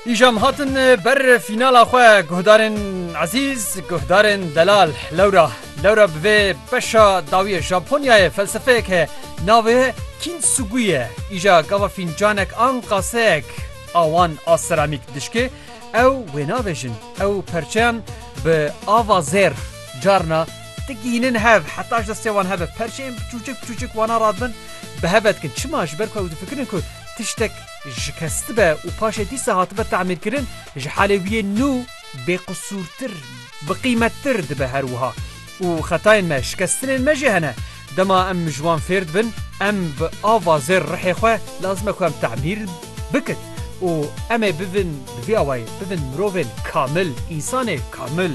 Îjam hatin ber fînala xwe guhdarên ezîz, guhdarên delal. Lewra lewra bi vê beşa dawî ye Japonyayê felsefeyek heye navê ye Kîntsugu ye. Îja gava fîncanek an qaseyek a wan a seramîk dişkê ew wê navêjin. Ew perçeyan bi ava zêr carna Ti gihînin hev, heta ji destê wan hebe perçeyên biçûçik biçûçik wana ra dibin, bi heve dikin. Çima? Ji ber ku ew difikirin ku tiştek şikestibe û paşê dîsa hatibe temîrkirin, ji halê wî yê nû bêqisûrtir, biqîmettir dibe. Her wiha û xetayên me, şikestinên me jî hene. Dema em ji wan fêr dibin, em bi ava zêr rihê xwe lazim e ku em temîr bikin û em ê bibin bi vî awayî bibin mirovên kamil, însanê kamil.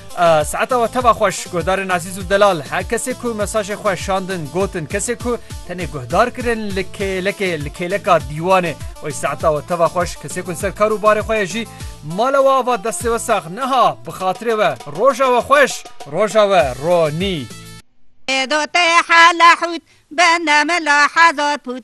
Saeta we teva xweş guhdarên ezîz û delal her kesê ku mesajê xwe şandin gotin kesê ku tenê guhdar kirin li kêlekê li kêleka dîwanê oy saeta we teva xweş kesê ku ser kar û barê xwe ye jî mala we ava destê we sax neha bi xatirê we roja we xweş roja we ronî. Ê dotê hela hût, bende mila heza pût,